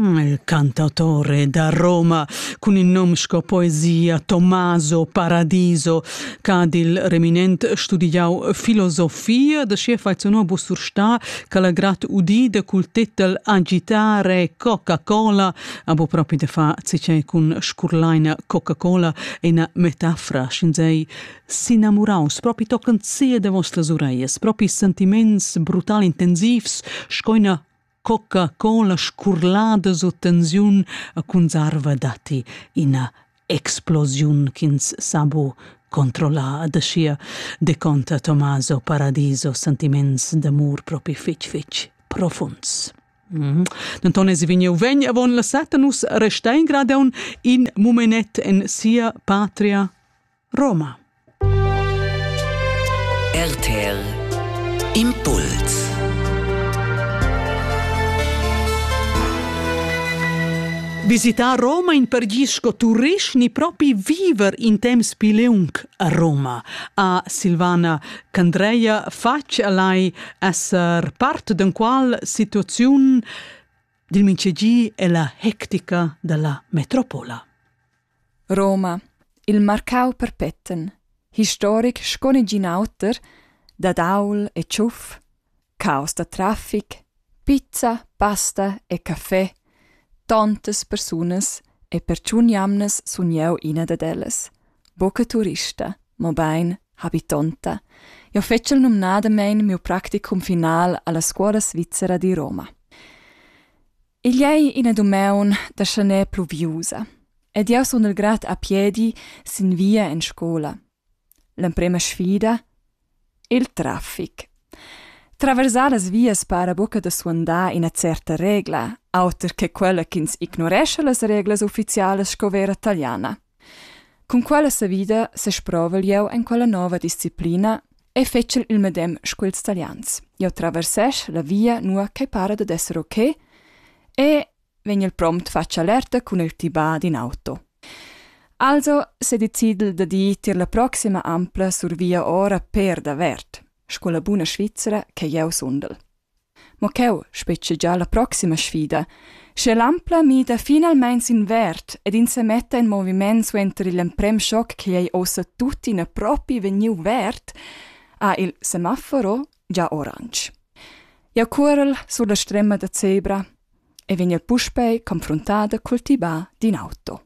Il cantautore da Roma cun il nom sco poesia Tommaso Paradiso ch'ha dil reminent studiau filosofia da sia faizionò Bussurstà ch'ha la grat udida cul tetel Agitare Coca-Cola abo propi da fa cicei cun scurlaina Coca-Cola è una metafora schin sei s'inamuraus propi tochen sia de vostras ureias, propi sentiments brutal intensivs, sco ina cocca con la scurlada sut tensiun a cunzarva datti ina explosiun ch'ins sa bu controllar da sia de conta Tommaso Paradiso sentiments d'amur propi fitch fitch profunds. Mm. Denton es vegniu vegn avon la setta nus resta in gradeun in mumenet en sia patria Roma. RTL Impuls Visitar Roma in per gis sco turist ni propi viver in temps pli leung a Roma, ha Silvana Candreia fatg alai esser part d'enqual situaziun dil minchegi e la hectica dalla metropola. Roma, il marcau perpeten, historic sco negin auter, dad aul e tschuf, caus da traffic, pizza, pasta e caffè, tontas persunas e per tschun jamnas sun jeu ina dad ellas. Buca turista, mobein habitonta. Jeu fetschel numnadamein miu practicum final alla scuola svizzera di Roma. Igl ei ina dumeun da schaner pluviusa ed jeu sun il grad a piedi sin via en scola. L'emprema sfida? Il traffic. Traversar las vias para buca da suandar ina certa regla, auter che quella ch'ins ignorescha las reglas ufficialas sco vera taliana. Cun quella savida sesprovel jeu en quella nova disciplina e fetschel il medem sco ils Talians. Jeu traversesch la via nua ch'ei para dad esser ok e vegnel prompt fatg alerta cun il tibà d'in auto. Also sedecidel da dir tier la proxima ampla sur via ora per davert, sco la buna Svizra che jeu sundel. mo cheu spetgegia la proxima sfida, sche l'Ampla mida finalmein sin verd ed ins semetta in moviment suenter igl emprem schoc ch'ei ei ossa tuttina propi vegniu verd, ha il semaforo gia oransch. Jau cuorel sur la strema da zebra e vegn puspei confruntada cul tibà d'in auto.